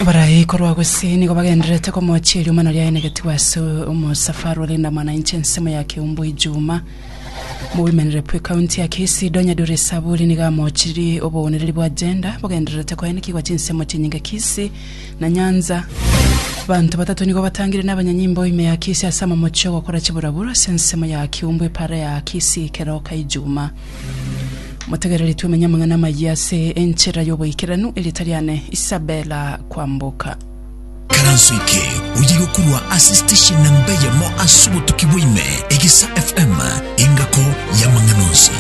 Abarai korwa gose nigo bagendererete komochia erioma naria aenegetigwe ase omosafari ore endamana inche ensemo ya Keumbu Ijuma. Mogoimanire bwe county ya Kisii Donya Duri Saburi nigo amochirie obounereri bwa gender bogendererete koenekigwa chinsemo chinyinge Kisii na Nyanza. Banto batato nigo batangire na abanyanyimbo ime ya Kisii ase amamochi ogokora chiburabura ase ensemo ya Keumbu epara ya Kisii Keroka Ijuma. Motegereri twemenye amang'ana amayia ase enchera y'oboikeranu, erieta riane Isabella Kwamboka. Karanso eke oye gokorwa ase station namba eyemo ase obotuki bwaime, Egesa FM, engako y'amang'ana onsi.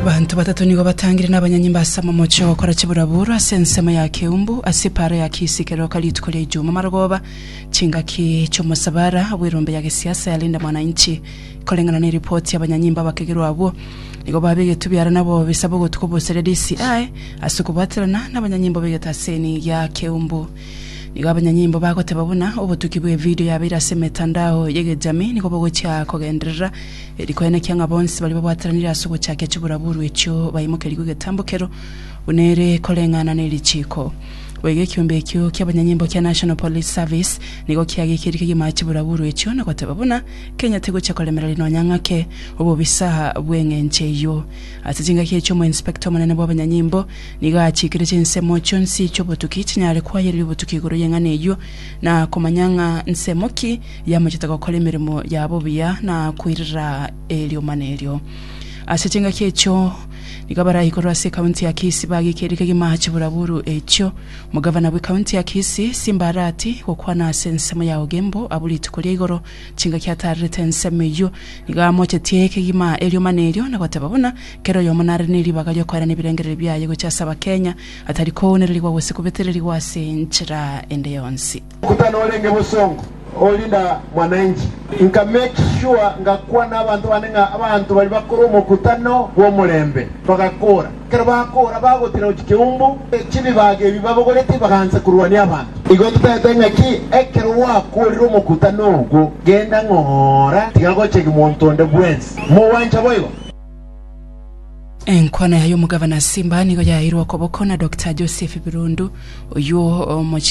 Banto batato nigo batangire n'abanyanyimba ase amomoche ogokora chiburaburu ase ensemo ya Keumbu ase epaaro ya Kisii keroka rituko ria Ijumaa marogoba chingaki chi'omosabara bw'erombe ya gesiasa ya Linda Mwananchi Koreng'ana neripoti y'abanyanyimbo abakegerwa abwo, nigo babegetwe biara nabo bisabo ogotuka obosare risi aye ase okobwaterana nabanyanyimbo b'egetaseni gia keumbu. Nigo abanyanyimbo bagoteba buna obotuki bw'evidio yabeire ase emetandao y'egejamii nigo bogochia kogenderera eri koenekia ng'a bonsi baria babwateranire ase ogochakia chiburaburu echio baimokerigwe egetambokero buna ere koreng'ana nerichiko. Boigo ekiombe ekio ki'abanyanyimbo kia National Police Service nigo kiageikeiri kegima chiburaburu echio na goteba buna Kenya tigochia koremera ri nonya ng'ake obobisa bw'eng'encho eyio. Ase chingaki echi omoinspector omonene bw'abanyanyimbo nigo achiikire chinsemo chionsi chi'obotuki chinyare kwayereria obotuki igoro y'eng'ana eyio na komanya ng'a nsemo ki yamachete gokora emeremo yabo buya na koirera eriomana erio. Ase chingaki echio nigo abarayi korwa ase ekaunti ya Kisii bagikire kegima chibura buru echio Omogavana bwe county ya Kisii Simba Arati gokwana ase ensemo ya Ogembo abwo rituko ria igoro chingaki ataarerete ensemo eyio, nigo amochetie kegima erioma nerio na goteba buna kera oyomo nare neribaga riokoera nebirengererio biaye gochia ase abakenya atari kounererigwa gose kobetererigwa ase enchera ende yonsi. Kutana orenge bosongo orinda mwananchi. Nka make sure ngakwana abanto bane ng'a abanto baria bakore omokutano bw'omorembe. Bagakora. Ekero bakora bagotira gochia keumbu echibibaga ebi babogoreti bagaancha korwania abanto. Igo totaete ng'aki ekero gwakorire omokutano ogwo genda ng'ora tiga gochegi monto onde bwensi. Mogwancha boigo? Enkwana ya y'omogabana Simba nigo yaeirwe okoboko na Doctor Joseph Birundu, oyio omochire.